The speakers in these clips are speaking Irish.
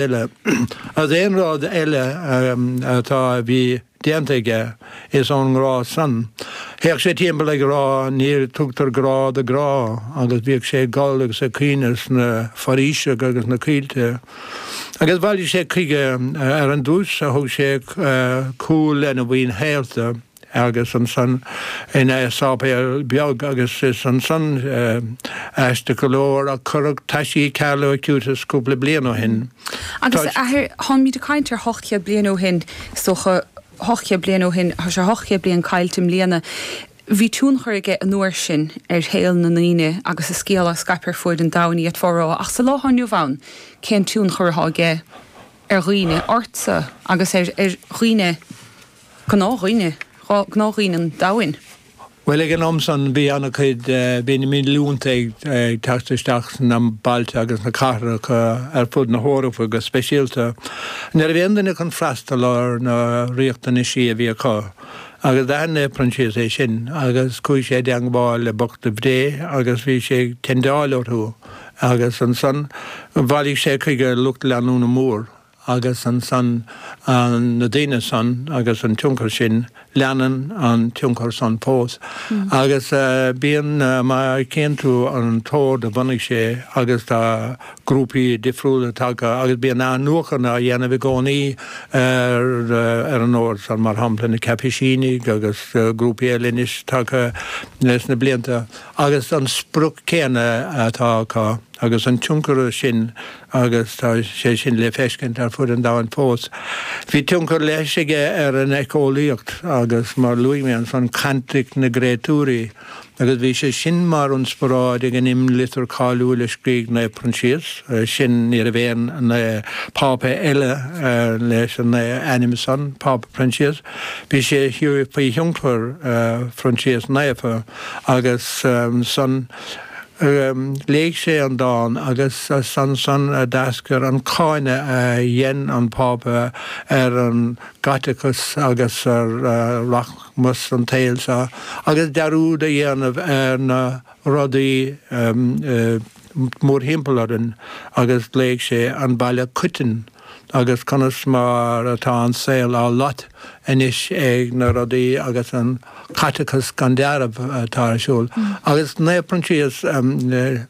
eile. As aon rud eile atá a bhí déanta aige, is ón ngrá san. Théadh sé timpeall ag rá ní tugtar grá do ghrá agus bhíodh sé ag gol agus ag caoineadh sna foraoiseacha agus sna coillte. Agus bhailigh sé chuige ar an dtúis a thug sé cúl lena mhaoin shaolta. agus ansan i sáipéal beag agus is ansan, aisteach go leor, a cuireadh taisí Carlo Acutis cúpla bliain ó shin. Agus, a Athair, táimid ag caint ar hocht chéad bliain ó shin, is dócha. Hocht chéad bliain ó shin. Tá sé hocht chéad bliain caillte i mbliana. Bhí tionchar aige an uair sin ar shaol na ndaoine agus a scéal a scaip ar fuaid an domhain ach cén fáth ach sa lá atá inniu ann cén tionchar atá aige ar dhaoine, ortsa agus ar dhaoine? gnáthdhaoine, gnáthdhaoine an domhain. Bhuel, ag an am san, bhí an-chuid, bhí na mílliúnta ag teacht isteach sna bailte agus sna cathracha ar fud na hEorpa go speisialta. Ní raibh aon duine chun freastal ar na riachtanaisí a bhí acu. Agus d'aithin Naomh Proinsias é sin agus chuaigh sé i dteangmháil le bochta Dé agus bhí sé ag tendeáil orthu agus ansan bhailigh sé chuige lucht leanúna mór agus ansan na daoine san agus an tionchar sin, leanann an tionchar san fós agus bíonn má tchíonn tú an t-ord a bhunaigh sé agus tá grúpaí difriúla tagtha agus bíonn athnuachan á dhéanamh i gcónaí ar an ord san, mar shampla na Caipisínigh agus grúpaí eile anois tagtha sna blianta agus an sprioc céanna atá acu agus an tionchar sin. agus tá sé sin le feiscint ar fud an domhain fós. Bhí tionchar leis aige ar an eiceolaíocht agus, mar a luaigh mé, ansan cantaic na gcréatúirí, agus bhí sé sin mar ionsparáid ag an imlitir cáiliúil a scrígh an Pápa Proinsias, sin ní raibh aon Phápa eile leis an ainm san, Pápa Proinsias, bhí sé faoi thionchar Phroinsias Naofa, agus san. Léigh sé an dán agus is ansan a d'eascair an cáineadh a dhein an Pápa ar an gCaiteachas agus ar rachmas an tsaoil seo agus dearúd a dhéanamh ar na rudaí mórthimpeall orainn agus ghlaoigh sé 'An Baile Coiteann'. agus conas mar atá an saol á lot anois ag na rudaí agus an caiteachas gan deáramh atá ar siúl. Agus Naomh Proinsias,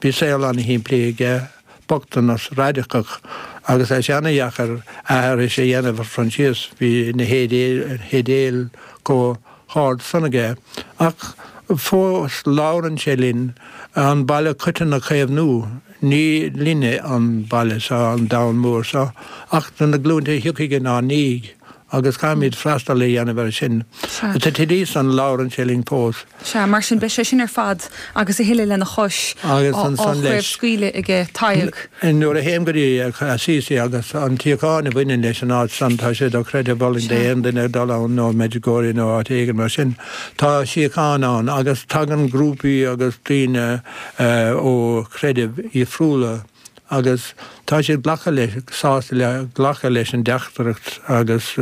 bhí saol an-shimplí aige, bochtanas raidiceach, agus tá sé ana-dheacair aithris a dhéanamh ar Phroinsias, bhí na hidéil chomh. hard san aige, ach fós labhrann sé linn, an baile coiteann a chaomhnú, ní linne an baile seo, an domhan mór seo, ach do na glúinte a thiocfaidh inár ndiaidh agus caithfimid freastal a dhéanamh air sin. Sea. Sa tslí san labhrann sé linn fós. Sea. Mar sin beidh sé sin ar fad agus a thuilleadh lena chois agus á chraobhscaoileadh aige, Tadhg. Nuair a théim go dtí Assisi agus an tsíocháin a bhaineann leis an áit san, tá sé dochreidthe d'aon duine dul ann, nó Medjugorje nó áit éigin mar sin, tá síocháin ann agus tagann grúpaí agus daoine ó chreidimh dhifriúla agus tá siad glacadh, sásta le, glacadh leis an dteachtaireacht agus.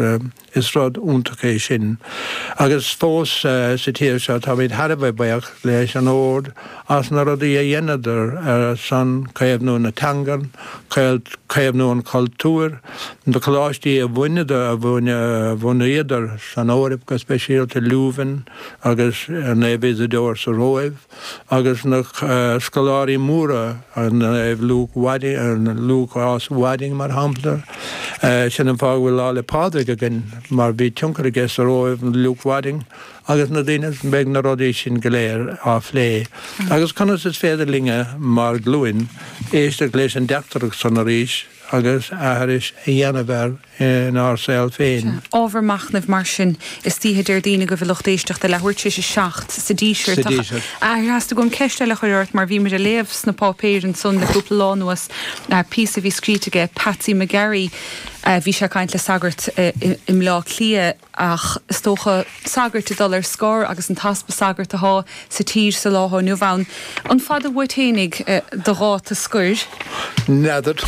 Is rud iontach é sin. Agus fós sa tír seo táimid thar a bheith baoch leis an ord as na rudaí a dhéanadar ar son caomhnú na teanga, caomhnú an chultúir, na coláistí a bhunaíodar san Eoraip, go speisialta Leuven agus Naomh Isidore sa Róimh. agus na scoláirí móra, an Luke Wadding, Lúcás Wadding, mar shampla. Sin an fáth go bhfuil Lá 'le Pádraig againn, mar bhí tionchar aige sa Róimh, Luke Wadding, agus na daoine, beidh na rudaí sin go léir á phlé. Agus conas is féidir linne, mar ghlúin, éisteacht leis an dteachtaireacht san arís? agus aithris a dhéanamh air inár saol féin. Sea, ábhar machnaimh mar sin. Istoíche Déardaoin agaibh, a lucht éisteachta, leathuair tar éis a seacht sa Díseart. Ach theastaigh uaim ceist eile a chur ort, mar bhíomair ag léamh sna páipéir ansan le cúpla lá anuas píosa a bhí scríte aige Patsy McGarry. Bhí sé ag caint le sagart i mBleá Cliath. ach is dócha, sagairt ag dul ar scor agus an t-easpa sagart athá sa tír sa lá atá inniu ann. An fada uait fhéinig do dháta scoir? N'fheadar.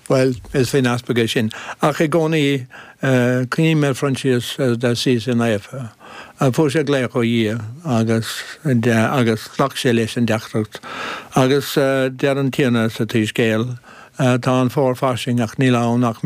Bhuel, is faoin easpag é sin. Ach i gcónaí, cuimhním ar Naomh Proinsias de Assisi naofa. Fuair sé glaoch ó Dhia agus agus ghlac sé leis an dteachtaireacht. Agus deir an Tiarna sa tSoíscéal, Tá an fómhar fairsing ach níl ann ach